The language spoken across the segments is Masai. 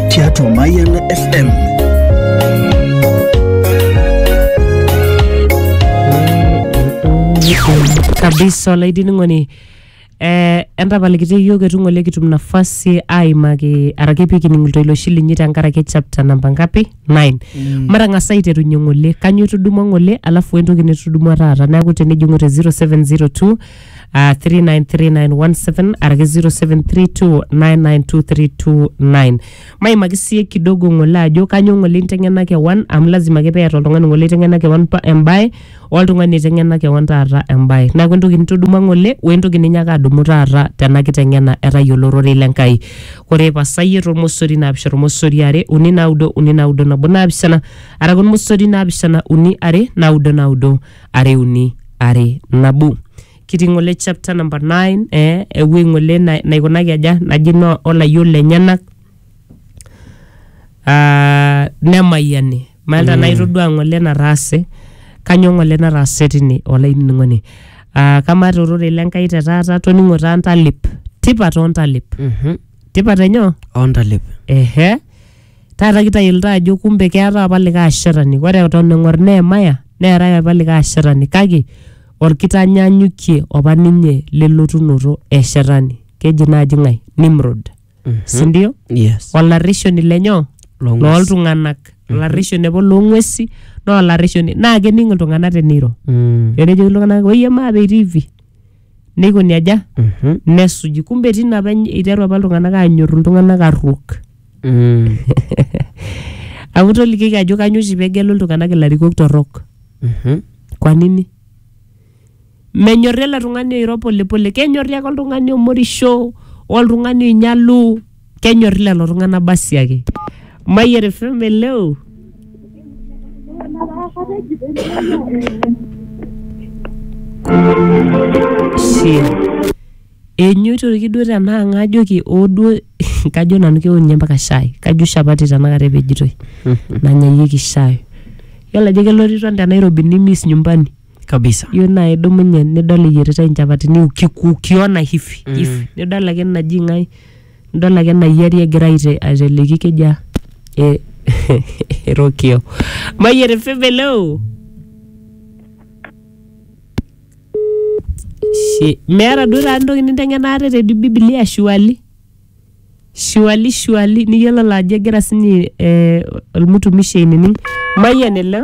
tiatua Mayiana FM. kabisa olainining'oni eh, entapalikiti iyiook etu ng'ole kitum nafasi aimaki araki pikining iltoiloshi linyi tenkaraki chapter namba ngapi 9 mm. matang'as aiterunye ng'ole kanyo itudumua ng'ole alafu entoki nitudumua taata neaku tenijing'u te 0702 uh, 3939117 araki 0732992329 maimaki sie kidogo ng'ole ajo kanyo ng'ole inteng'ena kewan amu lazima ake peeta oltung'ani ng'ole iteng'ena kewan pa- embae oltung'ani iteng'ena kewan taata embae neaku entoki nitudumua ng'ole wentoki ninyaka adumu taata tena kiteng'ena etayiolo ororei le nkai ore pasayie tormosori naapisha tormosori are uni naudo uni naudo nabo naapishana araki ormosori naapishana uni are naudo naudo are uni are nabo kitii ng'ole chapter number 9 eh, ewuei ng'ole na- naikunaki aja naji no olayiok lenyenak Ah, nemayiani malta mm. naitodua ng'ole nataase kanyoo ng'ole nataase tine olainining'oni Ah, kamaa te ororei le Nkai te taata toning'o taa ntalip tipat oo ntalip Mhm. tipat enyoo ontalip ehe Taata kitayiolito ajo kumbe keetae apa likae ashetani. Ore eton eng'or Nehemaya neetae apa likae ashetani kake olkitanyanyukie opa ninye lelotunoto e shetani. Keji naaji ng'ae? Nimrod. Si ndio? Yes. Olarreshoni le nyoo? Loong'uesi. Looltung'anak. Olarreshoni apa loong'uesi naa olarreshoni naa kening iltung'anak teneiro. Mm. Etejoki iltung'anak oyie maape itii hivi. neikoni aja Mhm. nesuji kumbe tina apa eny- iteru apa iltung'anak aanyorru iltung'anak arruok Mm. amu tolikioki ajo kanyo oshi pegelu iltung'anak ilarikok torrok Mhm. kwa nini menyorri ele tung'ani oiro polepole kenyorri ake oltung'ani omorisho oltung'ani oinyalu kenyorri lelo tung'anak basi ake mayian fm eleo Shit. enyoitoki duo tenaa ng'ajoki oo duo kajo nanu keon ninye mpaka shai kajo shapati tenakata epejitoi nanyayieki shai yiolo ajo keloriton te nairobi nimis nyumbani kabisa iyieu naa idumunye nidol eyieritae inchapatini ukiku ukiona hivi Mm. hivi nidol ake naji ng'ae nidol ake nayiari egira aite- aiteleki keja e- erokio mayiere febeleo Shi- meeta duo taata entoki ninteng'ena ate te bibilia shuali shuali shuali niyiololo ajo egira sinye eh, olmutumishi ainining mayian ele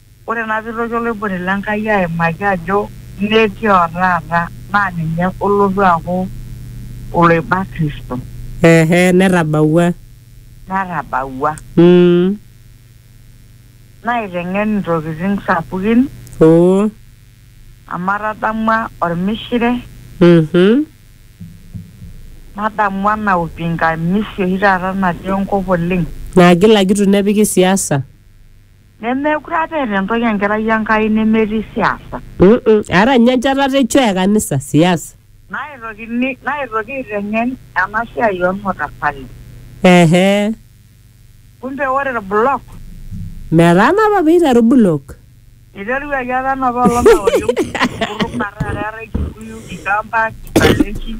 Ore naa peitoki oloiboni le Nkai aimaki ajo metii o taata naa ninye olotu aaku oloiba Kristo. Ehe, netabawua. Netabawua. Mm. Naiteng'en intokitin sapukin. Oo. Amu atadamua olmishire. Mhm. Nadamu ena upingamizi oshi taata natii enkop oleng. Nagilagil nepiki siasa. Nemeekure apa eeta entoki enkerai Enkai nemetii siasa. Aata ninye enchatata e choo e kanisa, siasa. Naaitokini naaitoki aiteng'en ena siai oo lmatafali. Ehe. Kumbe ore ilbulok. Metaana apa pee eiteru bulok. Eiteruaki apa enapa olong eori enkutuk naa taata eetae Kikuyu, Kikamba, Kikalenjin.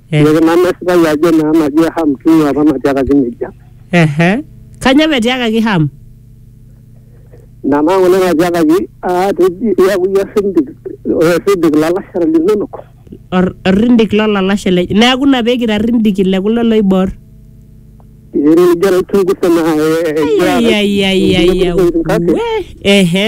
Eh. Kake nanu esipayu ajo naa naji Ham king'ua apa natiakaki nejia. Ehe. Kanyoo petiakaki Ham? Ina naa ng'ole natiakaki aa teji iyaku iyie osindik osindik lalashera linonok. Or- Orrindik lolalashe lenye. Neaku ina pekira rrindiki le kulo loibor. Ee nijo aichungusa naa eh, eh, egira Ayayayayaya. Kake We. Ehe.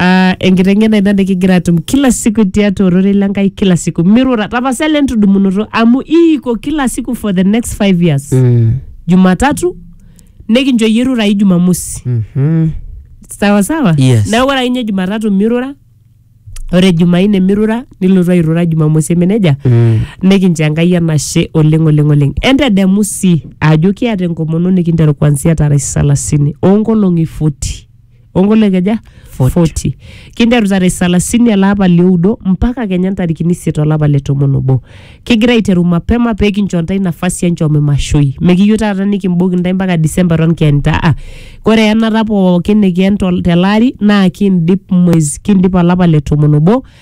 Ah, enkiteng'ena ina nikigira atum kila siku tiatua ororei le Nkai kila siku mirura tapasali entudumunoto amu iiko kila siku for the next five years Mm. jumatatu nikincho iyie irurai jumamosi Mhm. sawa sawa Yes. neeku ore akinye jumatatu mirura ore jumaine mirura nilotu airura jumamosi eme nejia Mm. nikincho enkai enashe oleng oleng oleng entedemu sii ajo kiata enkomono nikinteru kuanzia tarehe salasini oonkolong'i 40 ongolekeja 40 kinteru tarehe salasini ele apa lioudo mpaka kenya ntarikini isiet olapa le tomon obo kigira aiteru mapema pee kincho ntae nafasi enchom imashoi mekiyieu taata nikimboki ntae mpaka disemba eton kienita ah, kore enata pookin nikien tol- tele ari naa kindip mwezi kindip olapa le tomon obo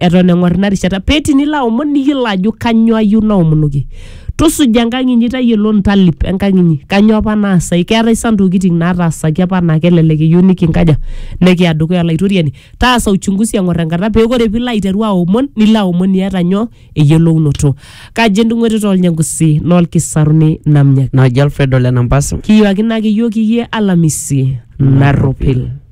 eton eng'or ina rishata pee tinilo aomon niyiolo ajo kanyoo ayieu naomonoki tusuja enkang inyi tayiolo ntalip enkang inyi kanyoo apa naasai keetae sa ntokiting nataasaki apa naa kelelek eyieu nikinkaja nikiya dukuya olaitoriani taasa uchunguzi eng'or enkata pee ore piilo aiteru aomon nilo aomon iyata nyoo eyiolounoto kaji endung'oti tolnyangusi nolkisaruni namnyaki naji Alfredo Lenampas. kiyuakino ake iyiook iyie alamisi narropil